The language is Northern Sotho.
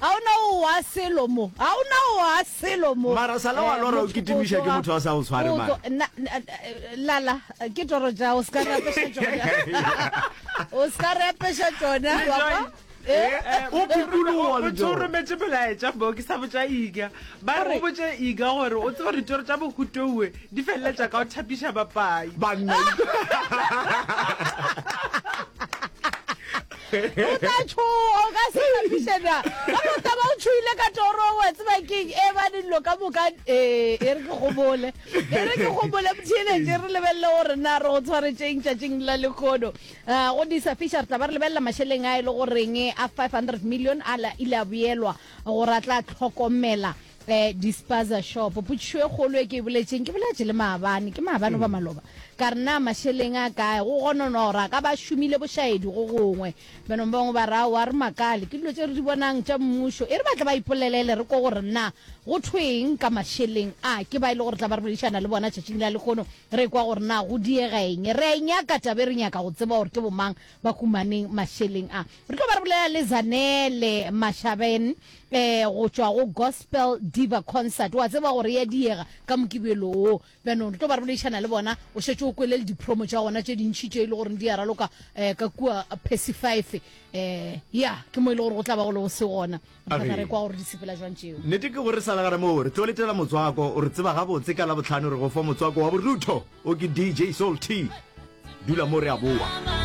Ga o na o wa selo mo. Ga o na o wa selo mo. Mara sa le wa lora o kitimiša ke motho a sa o tshware mara. Lala ke toro ja o ska rapesha tšona. O ska rapesha tšona wa kwa. Eh, eh, o phuthuloa le jo. O rometse bolaetša bo ke sa botša iga. Ba re o botše iga gore o tseba ditoro tša bohutoue di feleletša ka o thapiša bapai. Banna. o tla tšhoga o ka se tapišena ka mota ba o tšhoile ka toro wa tseba keng e ba dillo ka moka ee e re ke gobole e re ke gobole motheeletše re lebelele gore na re go tshwaretšeng tšatšing la lekgono Ah, go disa fisher taba re lebelela mašeleng a e le goreng a 500 million a la- ile a boelwa gore a tla tlhokomela Eh, dispaza shop potšišo e kgolo e ke e boletšeng ke boletše le maabane ke maabane goba maloba ka re na mašeleng a kae go gononwa gore a ka ba šomile bošaedi go gongwe benong ba bangwe ba ra wa re makale ke dilo tse re di bonang tša mmušo e re batle ba ipolelele re ko gore na go thweng ka mašeleng a ke ba e le gore tla ba re boledišana le bona tšatšing la lekgono re kwa gore na go diega eng re a e nyaka tabe re nyaka go tseba gore ke bomang ba humaneng mašeleng a re tlo ba re bolela le zanele mashabeng eh, go tšwa go gospel diva concert wa tseba gore ya diega ka mokibelo o bjanong re tlo ba re boleišana le bona o šetse o kwelele dipromo tša gona tše dintšhi tše e le goreng di ya raloka um ka kua pessy five um ya ke mo e le gore go tla ba go le go se gona thata re kwa gore di sepela jwang tšeo nnete ke gore sa legare moo re tlo letela motswako o re tseba gabotse ka la botlhano re go fa motswako wa borutho o ke dj soul t dula mo re a boa